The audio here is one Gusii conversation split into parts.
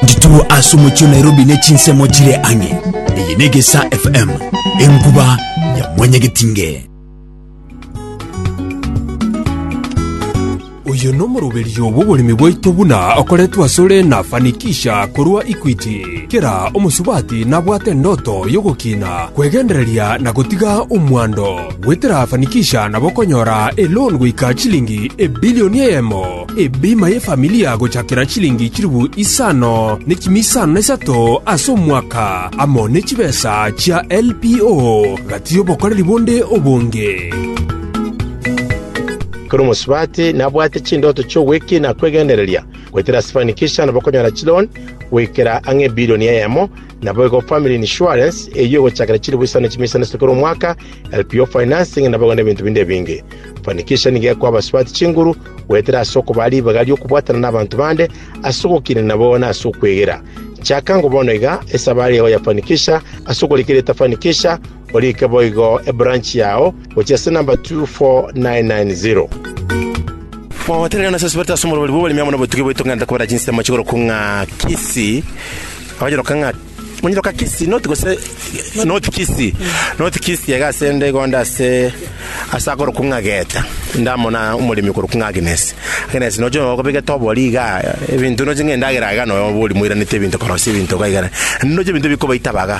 Ndituru ase omochie o Nairobi ne chinsemo chire ang'e. Eye ne Gesa FM, enkuba ya mwanyagetinge. Oyo nomoroberio bw'oboremi bwaito buna okoretwe asore na Fanikisha korwa Equity. Kera omosubati nabwate endoto y'ogokina, kwegendereria na gotiga omwando. Gotirafanikisha nabo konyora eloan goika chilingi ebilioni eyemo, ebima y'efamilia gochakera chilingi chilifu isano ne chimi isano na isato ase omwaka, amo ne chibesa chia LPO, gati y'obokoreri bonde obonge. Ekero omosubati nabwate chindoto chi'ogwekina kw'egendereria, gotirafanikisha nabo konyora chiloan goikera ang'e ebilioni eyemo, Naboigo family insurance, eyio egochakera chilifu isano chimia isano ase kera omwaka, LPO financing, naboigo nebinto binde ebinge. Fanikisha nigo ekoa abasubati chinguru, goetera ase okobaa ribaga ri'okobwatana nabanto bande, ase ogokiina nabo na ase okwegera. Chaka ngo bono iga, esabari yao ya Fanikisha, ase okorika erieta Fanikisha, Orike boigo ebranch yao gochia ase number 24990. Gotenena ase Sibete ase omorwori bw'oboremi amo nobotugi bwaito ng'enta kobera chinsemo chigorokwa ng'a Kisii, abanyeroka ng'a Monyeroka Kisii North gose North Kisii North Kisii iga ase ende igo ande ase ase akorokwa ng'a Geta inde amo na omoremi okorokwa ng'a Agnes Agnes noche nonya okobegete obori iga ebinto noche ng'a endagera iga nonya obori moiranetie ebinto korosia ebinto iga iga naende noche ebinto bikobaita baga.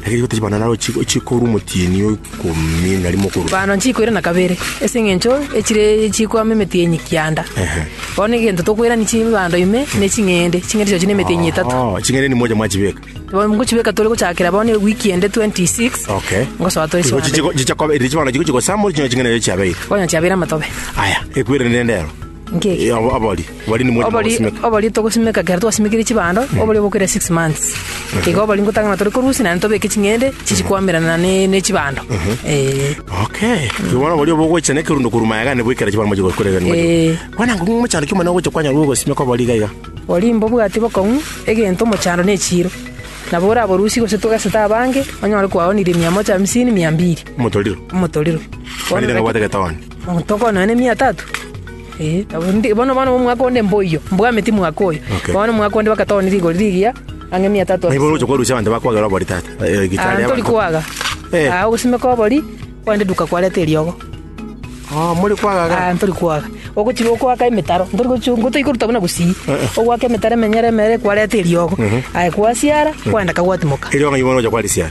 Lakini rigo tachibana naro chi- chikorwa omotienyi o ikomi na rimo okorwa. Bano nchikoira na kabere ase eng'encho echire chikwama emetienyi kianda Ehe. bono egento tokoirani chibando ime ne ching'ende ching'ende chiacho ne emetienyi etato Oh, ching'ende ni moja mwachibeka. bono ngochibeka tore gochakera bono ewiki ende 26 Okay. ngosoa tore Chigo chibando chigo- chichakobe- eri chibando chigo chigosama ori ching'ende chiabeire. bono chiabeire amatobe Aya, ekwerende nende ero. Nkeki. Abo- abori bori nimwe Obori, mogosimeka. obori togosimeka kero twasimekire chibando, obori obokire six months. Igo obori ngotang'ana tore korusia naende tobeke ching'ende chichikwamerana ne, ne chibando. Eh. okay kibona bori obogocha ne kirundo kuruma yaga ne bwekera chibara moje gokorega ni Eh. kwana ngo mochando kimo na gocha kwanya rugo simeka bori gaiga Bori mbobwati bokong'u, egento mochando ne echiro. Nabo oraborusie gose togesete abange, onyore kwaonirie mia moja hamsini, mia mbiri. motoriro Omotoriro. Bori nabwate getawani Omonto okononya nemiya tatu? Ee. Bono bono omwaka onde mboyio, mbwameti mwaka oyo. Okay. Bono omwaka onde bagatoonia rigori rigiya, ang'e emiya tatu. Naibo oroche korusia abanto bakwagera obori tata. Eh, gitari Aye tori kwaga. Eh. Ah, ogosimeka obori, kwande duka kwareta eriogo. Oh, muri kwaga ga. Ah, ntori kwaga. Ogochiga okwaka emetaro, ntori gochia ngotoika koruta buna gusii. Ogwaka emetaro emenyere emere kwareta eriogo. Aye kwasiara, kwandeka gwatimoka. Eriogo ng'ai bono oja kwarisiara?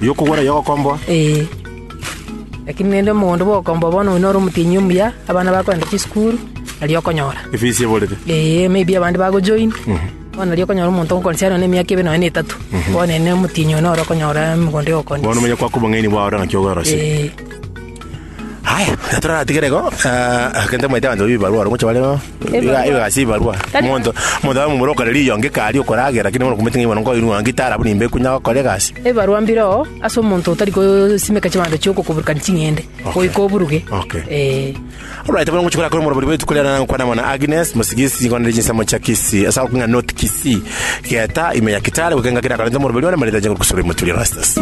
y'okogwera y'ogokomboa. Ee. Lakini rende omogondo bw'ogokomboa bono oyo nore omotienyi omuya, abana bakogenda chisukuru, nari okonyora. Efisi eborete. Ee, maybe abande bagojoin, bono nari okonyora omonto ngo considerwa na emiaka ebe nonye na etato, bono ere omotienyi oyo nore okonyora emogondo Bono y'ogokondisia. omanye kwaka obong'aini bwao ore ng'aki obwerosia. Ee. Haya, na toraratigere igo, ah, egento omoeete abanto babe ebibarwa ore gocha bare. Iga iga ase ebarwa, omonto omonto abe momura okore riiyo ngika aria okoragera, lakini bono okomanyete ng'a oyo bono nkoinwa ng'a ngitara buna imbe kunya gokora egasi. Ebarwa mbire oo ase omonto otari gosimeka chibando chio gokoburukani ching'ende goika oburuge. Okay. Ee. Alright, bono ngochia korakora omorobori bwa rituko riane nagokwana mono Agnes, mosigisi, ngokwana riri chinsemo chia Kisii, ase agokig'a North Kisii. Geta ime ya kitare gokenga kere akarenta omoroberi one marita chinguru kosura emoturi Erastus.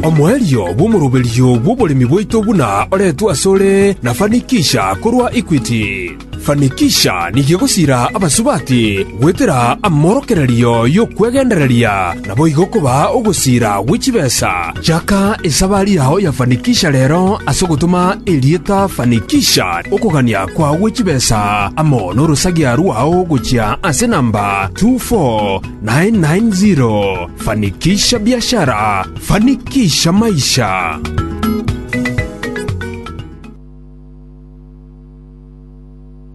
Omoerio bw'omoroberi bw'oboremi bwaito buna oretwe asore na Fanikisha korwa Equity. Fanikisha nigo egosira abasubati goetera amorokererio y'okwegendereria naboigo koba ogosira gwe chibesa Chaka esabari yao ya Fanikisha rero ase ogotoma erieta Fanikisha okogania kwagwe chibesa amo norosagia rwao gochia ase namba 24990. Fanikisha biashara, fanikisha maisha.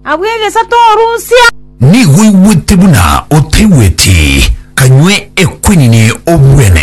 Abwo egesato orusia. Nigo oigwete buna otaigweti, kanywe ekwenini obwene.